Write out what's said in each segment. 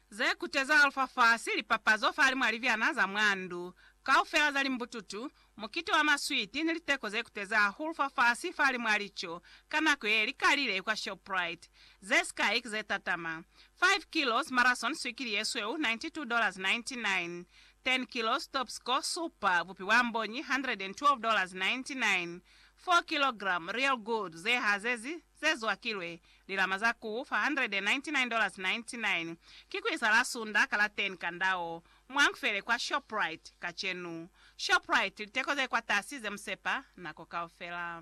Ze kuteza Alfa fa si lipapazo fahali mwa libyana za mwa ndu kaufela za limbututu, mukiti wa maswiti ni liteko ze kuteza hahulu fa fasi fahali mwa lico ka nako ye li kalile kwa Shoprite. Ze sikai ki ze tatama, 5 kilos marathon swikili ye sweu $92.99, 10 kilos top score supa bupi bwa mbonyi $112.99, 4 kilogram real gold ze hazezi ze zwakilwe, lilama za ku $499.99, ki ku isa la sunda ka la 10 ka ndao, mwa Nkfele kwa Shoprite, kacenu. Shoprite, liteko ze kwatasi ze musepa nako kaufela.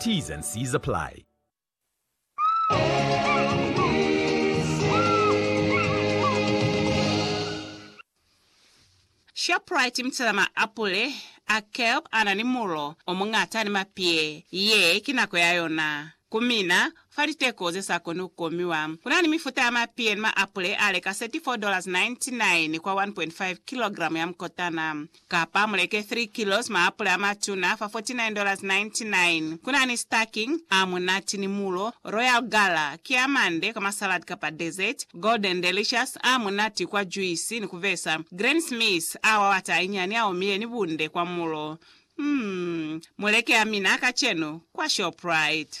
T's and C's apply. Shoprite Mtsela Maapule a kelp a na ni mulo o muñata ni mapie. Ye ki nako ya yona. Ku mina, fa liteko ze sa koni ku komiwa, ku na ni mifuta ya mapie ni maapule a leka 34.99 dollars kwa 1.5 kilogramo ya mukotana. Kapa muleke 3 kilos maapula amatuna fa $49.99. Kuna ni stacking, a munati ni mulo, Royal Gala, ki a mande kwa masalad kapa dessert, Golden Delicious, a munati kwa juisi ni kubesa, Granny Smith, a wawata ainyani a omile ni bunde kwa mulo. Umm, muleke a mina kacenu kwa Shoprite.